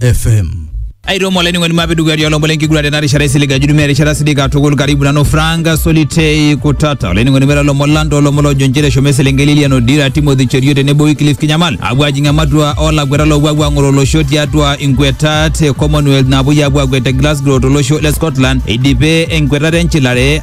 FM. aitomo olainining'oni mapi dukuya tialo mbole enkiguran tena rishata isilig ajudumia erishata sidik katukul karibu nanu franka solitei kutata olainining'oni mera lomon lang toolomon loojo nchere eshomo eselenkei lilian odira timothy cherio tenebo wiklif kinyamal apuo ajing ematua olakweta loopuo apuo ang'oro olosho tiatua inkwetat e commonwealth naapuoi apuo akwet te glasgow tolosho le scotland eidipe enkwetata enchilare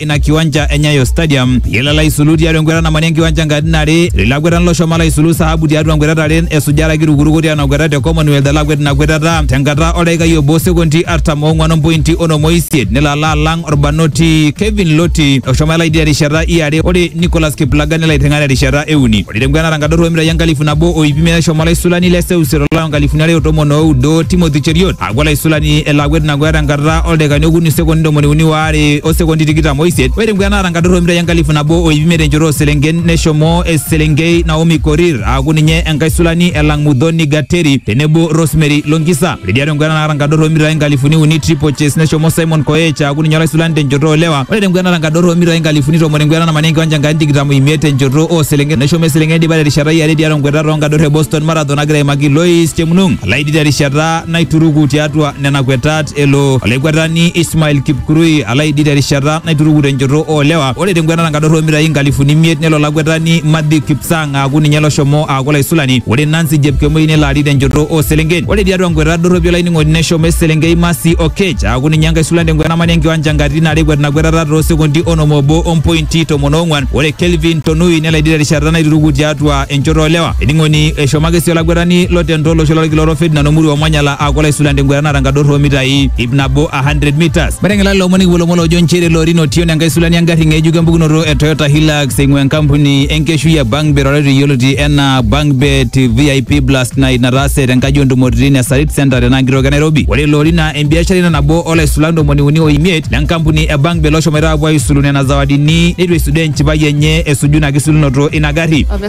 ina kiwanja e Nyayo Stadium yila laisulu tiatua enkwetata namani enkiwanja nkatitin are lilakwetani loshomo laisulu sahabu tiatua nkwetata are esujara kitukuruko tiatua kwetata te Commonwealth alakwet ina kwetata tenkata oldaikai obo sekondi artam oong'wan ompointi onom oisiet nelo alo alang orbanoti Kevin Loti oshomo elai terishata iare ore Nicholas Kiplagat nelo aiteng'a terishata euni ore tenkwetata nkadorro omitai enkalifu nabo o iip imiet neshomo olaisulani le seuseu tolari onkalifuni are o tomon oudo Timothy Cheriot apuo olaisulani elo akwet ina kweta enkata oldaikani okuni sekondi ntomoni uni waare o sekondi tikitam oisiet ore enkwet naata enkadoro omitai enkalifu nabo o ip imiet enchoto ooselenken neshomo eselenkei Naomi Korir aaku ninye enkaisulani elang Mudhoni Gateri tenebo Rosemary Longisa ore tiatua enkwet naata enkadoro omitai inkalifuni uni triple chase neshomo Simon Koech aaku ninye olaisulani tenchoto oolewa ore tenkwet naata enkadoro omitai inkalifuni tomon enkwet natamana enkiwanja enkani tikitam oimiet tenchoto ooselenken neshomo eselenkei naidipa terishata e are tiatua nkweta toonkador e Boston Marathon nagira aimaki Lois Chemnung terishata naituruku tiatua nena kwetat elo olaikwetani Ismail Kipkurui alo aidid terishata naituruku tenchoto oolewa. Ore tenkwetata enkadorro oomitai inkalifuni imiet nelo olakwetani Matthew Kipsang aaku ninye loshomo aaku olaisulani. Ore Nancy Jepkemoi nelo arik tenchoto oo selenken. Ore tiatua nkwetat dorropi olainining'oni neshomo eselenkei Mercy Oketch aaku ninye enkaisulan tenkwetata namanya enkiwanja nkatitin are ekwet ina kwetata too sekondi onom oobo o mpointi tomon oong'wan. Ore Kelvin Tonui nelo aidid terishata naituruku tiatua enchoto oolewa. Ening'oni eshomo ake sii olaguetani lotento olosho lolkila orok Ferdinand Omuru Omanyala aaku olaisulan tengueta naata enkadorro oomitai ip nabo 100 meters. Meteng'ela lelo omon ikipuo lomon loojo nchere ilo Orin Otieno enkae sulani engarri ng'ejuk empukunoto e Toyota Hilux eing'ua enkampuni enkeshui e Bangbet oretu yioloti enaa Bangbet VIP Blast Night nataase tenkaji oontumoritin e Sarit Centre tenaa kitok e Nairobi. Ore ilo Orin naa embiashara ina nabo olaisulan ntomoni uni o imiet le nkampuni e Bangbet loshomoita aapuo aisulu nena zawadini neitu eisudoo enchipai enye esuju ina kisilunoto ina garri.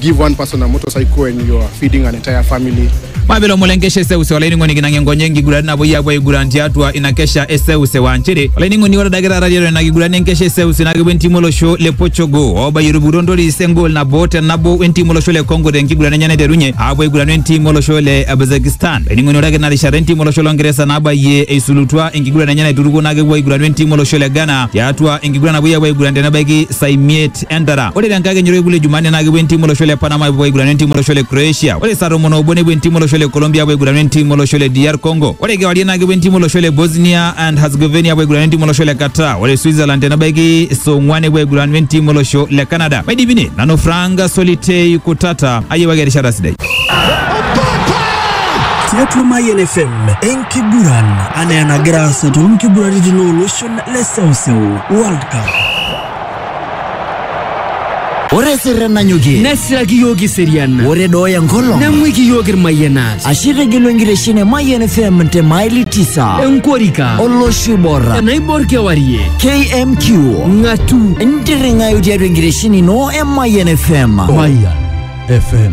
give one person a motorcycle and you are feeding an entire family. mabelo mulengekesha eseuse olaining'oni kinang'e ngonye enkiguran nabo yie apuo aiguran tiatua ina kesha eseuse wa nchere olaining'oni ore adake taata tiatua ina kiguran enkesha eseuse naa kepuo entimu olosho le Portugal oobayie etupukutuo ntoris engol nabo te nabo wentimu olosho le Congo tenkiguran enye naiterunye aapuo aiguranu entimu olosho le Uzbekistan olaining'oni ore ake ina rishata entimu olosho le Ongeresa nabayie eisulutua enkiguran enye naiturukuo naa kepuo aiguranu entimu olosho le Ghana tiatua enkiguran napuoi apuo aiguran tenebaiki saa imiet East Entara. Ore tenkakenya orkekun le Jumanne naa kepuo entiim olosho le Panama apuo aigurana entiim olosho le Croatia. Ore saa tomon oobo nepuo entiim olosho le Colombia apuo aigurana entiim olosho le DR Congo. Ore kewarie naa kepuo entiim olosho le Bosnia and Herzegovina apuo aigurana entiim olosho le Qatar. Ore Switzerland tenebaiki saa ong'uan nepuo aigurana entiim olosho le Canada. Maidipi ne nanu Frank Solitei Kutata ayiewaki erishata sidai. tiatua Mayian FM enkiguran anaa enagira aasa toonkiguraritin ooloshon le seuseu World Cup. Ore sirren nanyokie. Nesiraki yiok iserian. Ore dooya nkolong. Neng'uiki yiok irmayianat. Ashe itegelu enkitesheni e Mayian FM te maili tisa. Enkorika. Olosho Iborra. Enaibor kewarie. KMQ. Ng'atu. Ntirring'ayu tiatua enkitesheni ino e Mayian FM. Mayian FM.